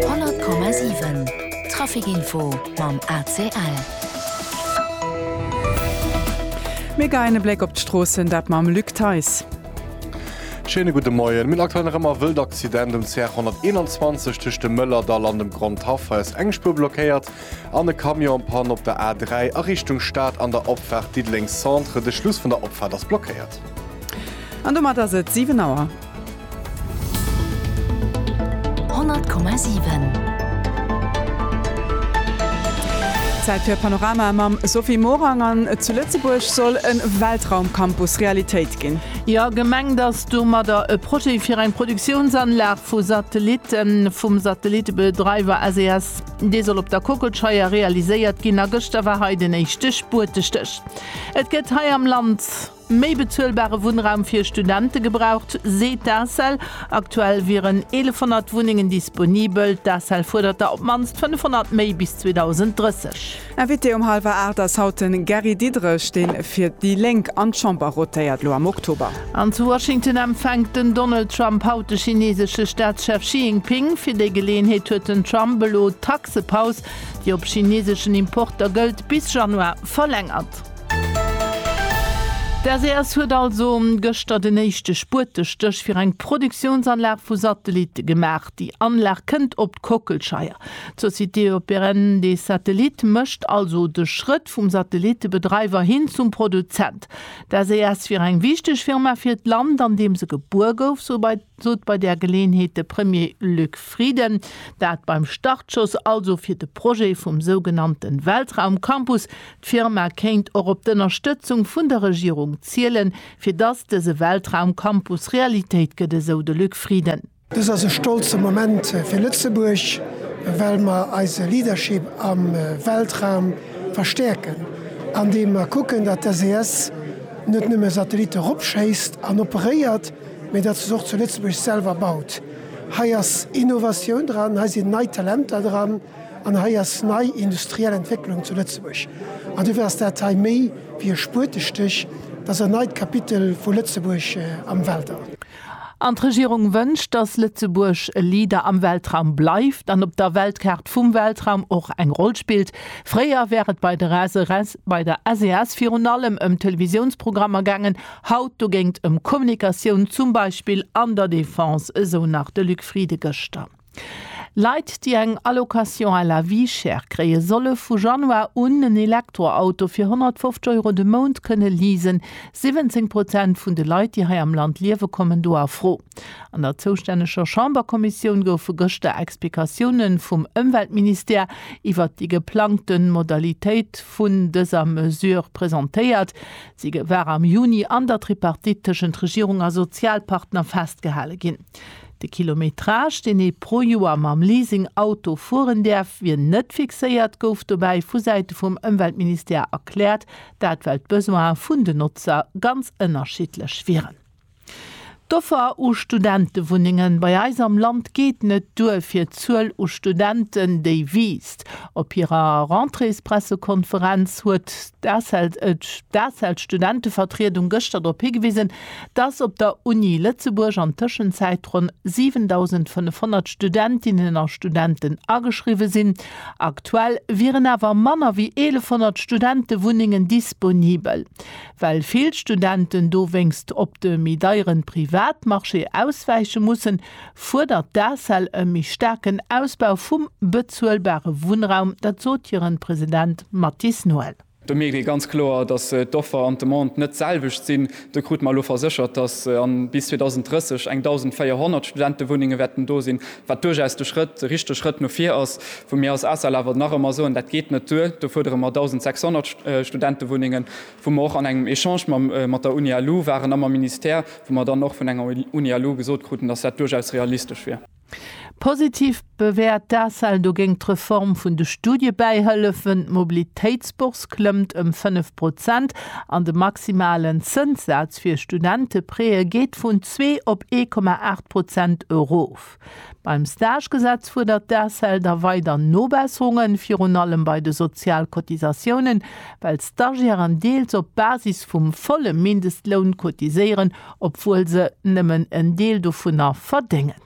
100,7 Trafic info mam ACL. Mir geien e Bléck op d'Stroossen, dat mam Luc Theis. Schéine gudde Moien. Mir aktuell nach ëmmer e wëllt Accident um CR 121 tëscht dem Mëllerdall an dem Grondhaff. Hei ass eng Spuer blockéiert. An e Camion en panne op der A3 a Richtung Stad an der Opfaart Diddeleng Centre. De Schluss vun der Opfaart ass blockéiert. An domat ass et 7 Auer. 100,7. Zäit fir Panorama mam Sophie Morang an zu Lëtzebuerg soll e Weltraumcampus Realitéit ginn. Jo, gemengt ass domadder e Projet fir eng Produktiounsanlag vu Satellitten vum Satellitebedreiwer SES. Dee soll op der Kockelscheier realiséiert ginn a gëschter war hei den éischte Spuertestéch. Et gëtt hei am Land méi bezuelbare Wunnraum fir Studente gebraucht, seet d'ACEL. Aktuell wieren 1.100 Wunnengen disponibel. D'ACEL fuerdert der op d'mannst 500 méi bis 2030. Invité um halwer 8 ass haut de Gary Diderich, dee fir déi Lénk an d'Chamber rotéiert, elo am Oktober. An zu Washington empfänkt den Donald Trump haut de chineesesche Staatschef Xi Jinping. Fir déi Geleeënheet huet den Trump elo d'Taxepaus, déi op chineeseschen Importer gëllt, bis Januar verlängert. D'SES huet also gëschter den éischte Spuetestéch fir eng Produktiounsanlag vu Satellitte gemaach. Déi Anlag kënnt op d'Kockelscheier. D'Société Européenne des Satellites mécht also de Schrëtt vum Satellittebedreiwer hin zum Produzent. D'SES wier eng wichteg Firma fir d'Land, an deem se gebuer gouf, sot bei där Geleeënheet de Premier Luc Frieden. Dat beim Startschoss also fir de Projet vum sougenannte Weltraumcampus. D'Firma kéint och op d'Ënnerstëtzung vun der Regierung zielen, fir dass dëse Weltraumcampus Realitéit gëtt, esou de Luc Frieden. Dëst ass e stolze Moment fir Lëtzebuerg, well mer eise Leadership am Weltraum verstäerken, andeem mer kucken, datt d'SES net nëmme Satellitte eropschéisst an operéiert, mee datt se se och zu Lëtzebuerg selwer baut. Hei ass Innovatioun dran, hei sinn nei Talenter dran an hei ass nei industriell Entwécklung zu Lëtzebuerg. An dofir ass dat hei méi wéi e Spuetestich, et ass en neit Kapitel vu Lëtzebuerg am Weltall. An d'Regierung wënscht, dass Lëtzebuerg e Leader am Weltraum bleift an op der Weltkaart vum Weltraum och eng Roll spillt. Fréier wär et bei der SRS, bei der SES virun allem ëm Televisiounsprogrammer gaangen, haut dogéint ëm Kommunikatioun, zum Beispill an der Defense, esou nach de Luc Frieden gëschter. Leit, déi eng Allocation à la vie chère kréien, solle vu Januar un en Elektroauto fir 150 Euro de Mount kënne leasen. 17 Prozent vun de Leit, déi hei am Land liewen, kommen do a Fro. An der zoustänneger Chamberkommissioun goufe gëschter Explikatioune vum Ëmweltministère iwwert déi geplangte Modalitéit vun dëser Mesure presentéiert. Si war am Juni an der Tripartite tëschent Regierung a Sozialpartner festgehale ginn. De Kilometrage, deen ee pro Joer mam Leasing-Auto fueren däerf, wier net fixéiert, gouf dobäi vu Säite vum Ëmweltministère erkläert. Dat well d'Besoine vun den Notzer ganz ënnerschiddlech wieren. D'Offer u Studentewunnenge bei eis am Land geet net duer fir d'Zuel u Studenten, déi wiisst. Op hirer Rentréespressekonferenz huet d'ACEL-Studentevertriedung gëschter drop higewisen, Dass op der Uni Lëtzebuerg an Tëschenzäit ronn 7.500 Studentinnen a Studenten ageschriwwe sinn. Aktuell wieren awer manner wéi 1.100 Studentewunnengen disponibel. Well vill Studenten dowéinst op de méi deieren Privatmarché auswäiche mussen, fuerdert d'ACEL e méi staarken Ausbau vum bezuelbare Wunnraum. Dat sot hiren President Mathis Noel. Do mierkt ee ganz kloer, datt d'Offer an d'Demande net d'selwecht sinn. Do krute mer elo verséchert, datt bis 2030 eng 1.400 Studentewunnenge wäerten do sinn, wat duerchaus de Schrëtt, de richtege Schrëtt no vir ass. Wou mir als ACEL awer nach ëmmer soen, dat geet net duer, do fuerdere mer 1.600 Studentewunnengen, wou mer och an engem Echange mat der Uni-ALU waren a mam Ministère, wou mer dann och vun enger Uni-ALU gesot kruten, datt dat duerchaus realistesch wier. Positiv bewäert d'ACEL dogéint d'Reform vun de Studiebäihëllefen, d'Mobilitéitsbourse klëmmt ëm 5 Prozent an de maximalen Zënssaz fir Studenteprêtë geet vun zwee op ee Komma aacht Prozent erof. Beim Stagegesetz fuerdert d'ACEL da weider Nobesserungen, virun allem bei de Sozialcotisatiounen, well d'Stagiairen deels op Basis vum volle Mindestloun cotiséieren obwuel se nëmmen en Deel dovunner verdéngen.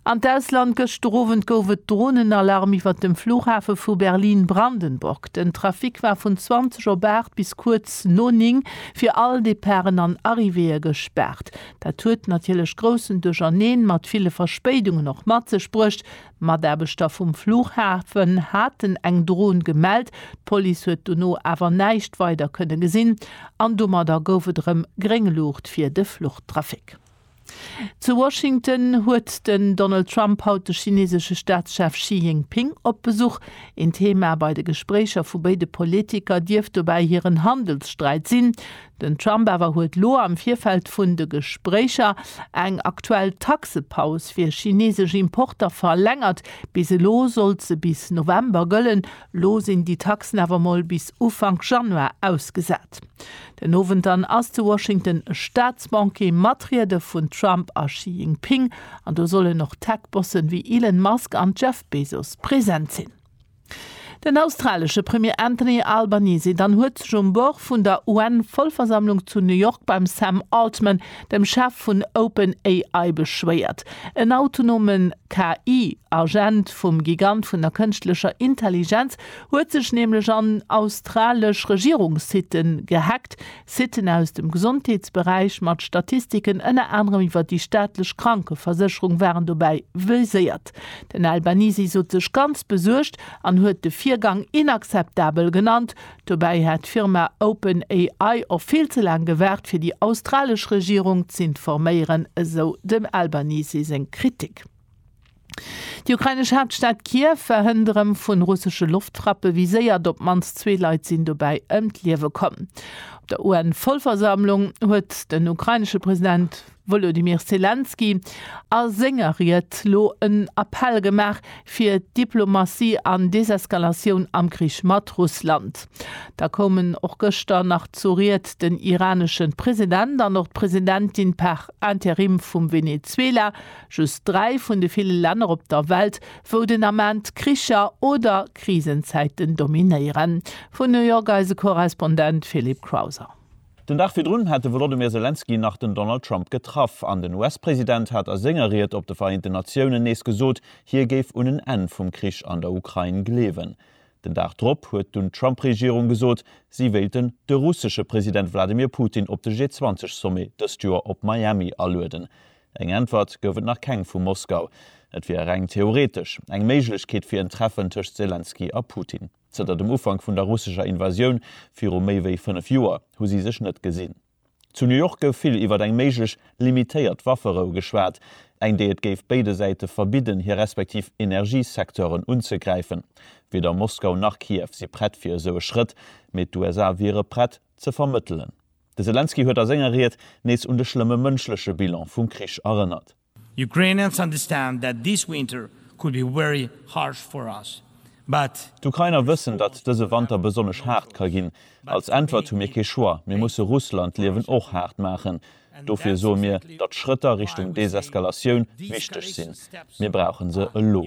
An d'Ausland, Gëschter Owend gouf et Dronenalarm iwwert dem Flughafe vu Berlin-Brandenburg. Den Trafic war vun 20 op 8 bis kuerz no 9 fir all Departen an Arrivéeë gespaart. Dat huet natierlech groussen Duercherneen mat ville Verspéidungen och mat sech bruecht, Mataarbechter vum Flughafen haten eng Dron gemellt, d'Police huet dono awer näischt weider kënne gesinn an domadder gouf et erëm gréng Luucht fir de Fluchtrafic. Zu Washington huet den Donald Trump haut de chinesesche Staatschef Xi Jinping op Besuch. Een Thema bei de Gespréicher vu béide Politiker dierft dobäi hiren Handelssträit sinn. Den Trump awer huet lo am Virfeld vun de Gespréicher eng aktuell Taxepaus fir chinesesch Importer verlängert. Bis elo sollt se bis November gëllen, lo sinn déi Taxen awer mol bis Ufank Januar ausgesat. Den Owend dann ass zu Washington e Staatsbanquet mat Riede vun Trump a Xi Jinping an do sollen och Tech-Bossen wéi Elon Musk an Jeff Bezos present sinn. Den australesche Premier Anthony Albanese dann huet sech um Bord vun der UN-Vollversammlung zu New York beim Sam Altman, dem Chef vun Open AI, beschwéiert. En autonome KI-Agent vum Gigant vun der kënschtlecher Intelligenz huet sech nämlech an australesch Regierungssite gehackt, Siten aus dem Gesondheetsberäich mat Statistiken ënner anerem iwwer déi staatlech Krankeversécherung waren dobäi viséiert. Den Albanese sot sech ganz besuergt an huet de Virgang inakzeptabel genannt. Dobäi hätt d'Firma Open AI och vill ze laang gewaart fir déi australesch Regierung z'informéieren, esou dem Albanese seng Kritik. Déi ukrainesch Haaptstad Kiew war hënt erëm vu russesche Loftfrappe viséiert, op d'mannst zwee Leit sinn dobäi ëm d'Liewe komm. Op der UN-Vollversammlung huet den ukrainesche President Wolodymyr Selenskyj a senger Ried lo en Appell gemaach fir Diplomatie an Deseskalatioun am Krich mat Russland. Da koumen och gëschter nach zur Ried den iranesche President an och d'Presidentin par interim vum Venezuela, Just dräi vun de ville Länner op der Welt, wou den Ament Kricher oder Krisenzäiten dominéieren. Vun New York eise Korrespondent Philippe Crowther. Den Dag virdrun hat de Wolodymyr Selenskyj nach den Donald Trump getraff an den US-President hat a senger Ried op de Vereenten Natiounen nees gesot, hie géif un en Enn vum Krich an der Ukrain gleewen. Den Dag drop huet dunn d'Trump-Regierung gesot, si wéilten de russesche President Wladimir Putin op de G20-Sommet dëst Joer op Miami alueden. Eng Äntwert gouf et nach keng vu Moskau. Et wier reng theoretesch eng Méiglechkeet fir en Treffen tëscht Selenskyj a Putin. Zënter dem Ufank vun der russescher Invasioun viru méi wéi fënnef Joer hu si sech net gesinn. Zu New York gouf vill iwwert eng méiglech limitéiert Wafferou geschwat, eng déi et géif béide Säite verbidden hir respektiv Energiesecteuren unzegräifen. Weder Moskau nach Kiew si prett fir esou e Schrëtt, mee d'USA wiere prett ze vermëttelen. De Selenskyj huet a senger Ried nees un de schlëmme mënschleche Bilan vum Krich erënnert. Ukrainians understand that this winter could be very harsh for us, but. D'Ukrainer wëssen, datt dëse Wanter besonnesch haart ka ginn. Als Äntwert hu mir kee Choix, mir musse Russland d'Liewen och haart maachen. Dofir soe mir, datt Schrëtter Richtung Deseskalatioun wichteg sinn. Mir brauche se elo.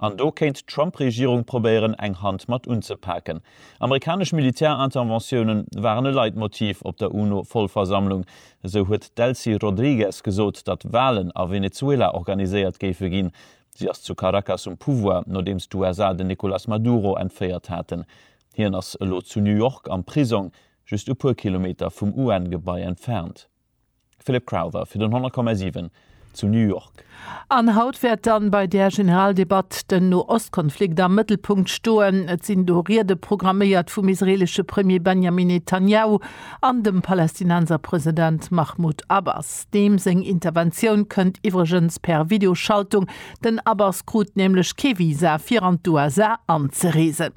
An do kéint d'Trump-Regierung probéieren, eng Hand mat unzepaken. Amerikanesch Militärinterventiounen waren e Leitmotiv op der UNO-Vollversammlung. Esou huet d'Delcy Rodrigues gesot, datt Walen a Venezuela organiséiert géife ginn. Si ass zu Caracas um Pouvoir, nodeems d'USA den Nicolas Maduro entféiert haten. Hien ass elo zu New York am Prisong, just e puer Kilometer vum UN-Gebai entfernt. Philip Crowther fir den 100,7 zu New York. An haut wäert dann bei där Generaldebatt den No-Ost-Konflikt am Mëttelpunkt stoen. Et sinn do Riede programméiert vum israelesche Premier Benjamin Netanjahu an dem Palästinenser President Mahmoud Abbas. Deem seng Interventioun kënnt iwwregens per Videoschaltung, den Abbas krut nämlech kee Visa fir an d'USA anzereesen.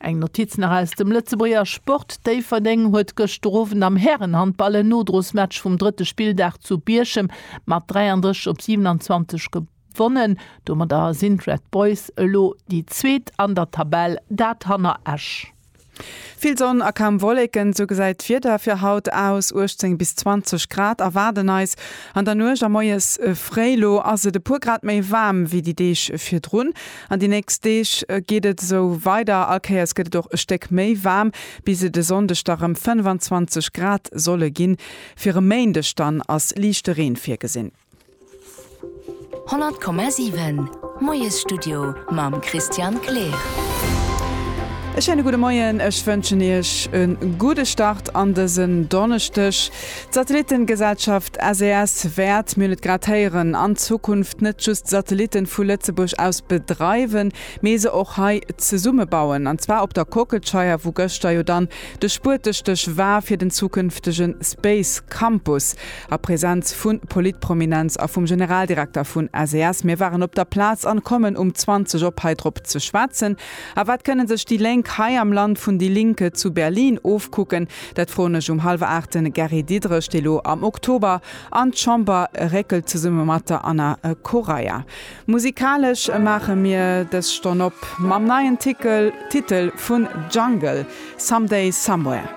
Eng Notiz nach aus dem Lëtzebuerger Sport, Déifferdeng huet gëschter Owend am Härenhandball en Nodrosmatch vum drëtte Spilldag zu Bierchem mat 33 op 27 gewonnen. Domadder sinn d'Red Boys elo déi zweet an der Tabell, dat hanner Esch. Vill Sonn a kaum Wolleken, esou gesäit d'Wieder fir haut aus. 18 bis 20 Grad erwaarden eis an der Nuecht a moies fréi. Elo ass et e puer Grad méi waarm wéi déi Deeg virdrun. An déi nächst Deeg geet et esou weider, all Kéiers gëtt et och e Stéck méi waarm, bis et e Sonndeg da rëm 25 Grad solle ginn. Fir e Méindeg dann ass liichte Reen virgesinn. 100,7 Moiesstudio mam Christian Kleer. E schéine gudde Moien, ech wënschen Iech e gudde Start an dësen Donneschdeg. D'Satellittengesellschaft SES wäert, mir hunn et grad héieren, an Zukunft net just Satellitten vu Lëtzebuerg aus bedreiwen, mee se och hei zesummebauen, an zwar op der Kockelscheier, wou gëschter jo dann de Spuertestéch war fir den zukünftege Space Campus, a Präsenz vu Politprominenz a vum Generaldirekter vun SES. Mir waren op der Plaz an kommen um 20 op hei drop ze schwätzen. A wat kënnen sech déi Lénk hei am Land vun déi Linke zu Berlin ofkucken? Dat froen ech um hallwer aacht de Gary Diederich, dee lo am Oktober an d'Chamber réckelt zesumme mat der Anna Correia. Musikalesch maache mir dës Stonn op mam neien Titel vun Jungle, Someday Somewhere.